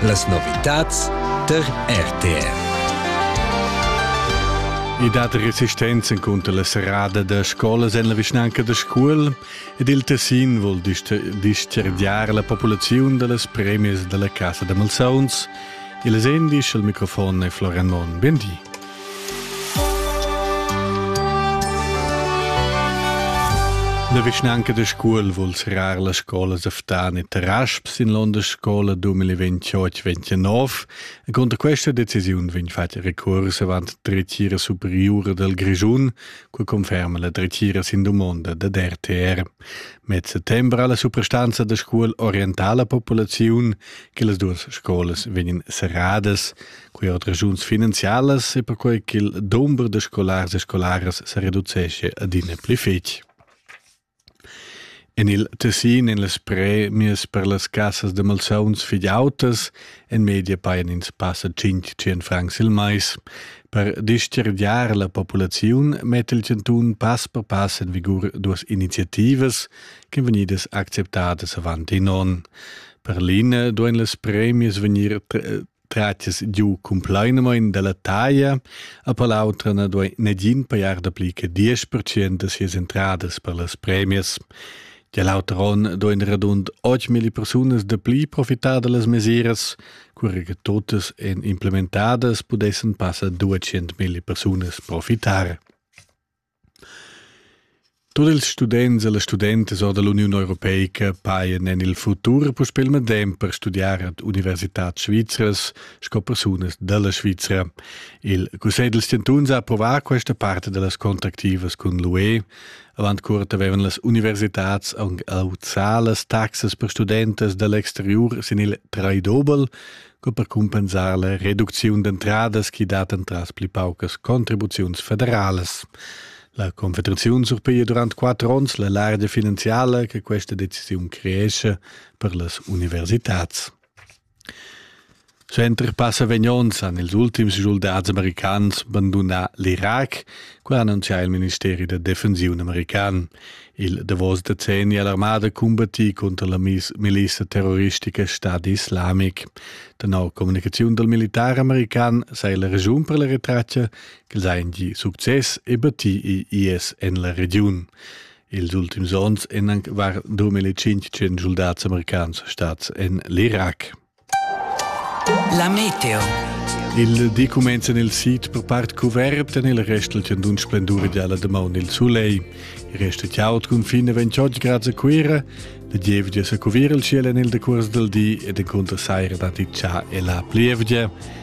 Las novitads tar RTR. I dat resistenza cunter la serrada da scolas en la vischnanca da Scuol ed il Tessin vul dischargiar la populaziun da las premias da la Casa da malsauns. Il Sendi, il microfon è Florian Mon. Bendì. La vischnanca da Scuol vul serrar las scolas Aftan e Tarasp sin l'onda scola 2028-29 e cunter questa decisiun vegn fatg recurs avant dretgira superiura del Grischun, cu conferma la dretgira sin domanda da DRTR. Met settembre ha la suprastanza da Scuol orientar la populaziun che las duas scolas vegnan serradas. Quei ha regiuns finanzialas e perquei ch'il dumber da scolars e scolaras se reducesce adina pli fetg. En il Tessin, en las premias per las cassas de malsauns figliautas, en media paien ins passa 500 francs il mais. Per dischergiar la populaziun metta il Cantun pass per pass en vigur duas iniziativas che vegnidas acceptadas avant in onn. Per l'ina duein las premias vegnir Tratias giu cumplainamain dalla taglia, a per l'autra na duai negin pajar dapli che 10% da sias entradas per las premias. Gia l'auter onn duain radund 8.000 persunas dapli profitar da las mesiras, cura che totas en implementadas pudessan passar 200.000 persunas profitar. Tut ils students e las studentas or da l'Uniun europeica pajan en il futur puspè il medem per studiar ad universitads svizras sco persunas da la Svizra. Il Cussegl dals chantuns ha approvà questa parte da las contractivas cun l'UE. Avant curt avevan las universitads auzà las taxas per studentas da l'exteriur sin il traidobel co per cumpensar la reducziun d'entradas chi dat entras pli paucas contribuziuns federalas. La Confederaziun surpiglia durant quatter ons la largia finanziala che questa decisiun creesce per las universitats. Center passa vegnons han ils ultims soldats americans bandunà l'Irac, qua annuncia il ministeri da defensiun american. Il davos decenni ha l'armada combattì cunter la milissa terroristica Stadi Islamic. Tenor communicaziun dal militar american sei la regiun per la retratga ch'els ein gi success e battì IS en la regiun. Ils ultims onns èn anc var 2500 soldats americans stads en l'Irak. La meteo. Il di cumenza nel sid per part cuvert en il restel tien d'un splendor ideala de maun il sulei. Il rest è chaud cun fine 28 grad a Cuira, le gievgia sa cuvir il ciel en il decurs del di ed encontra saira dati cha e la plievgia.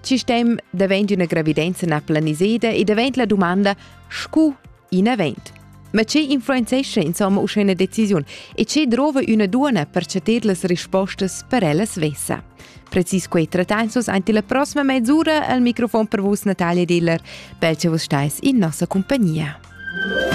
Il sistem davent üna gravidenza na planiseda e davent la dumanda scu in avent. Ma che influenzescha insomma uschè üna decisiun e che drova üna duona per chatir las rispostas per ella svessa? Precis quei trattain sus anti la prossima mezz'ura al microfon per vus Natalia Diller. Bel che vus stais in nossa compagnia.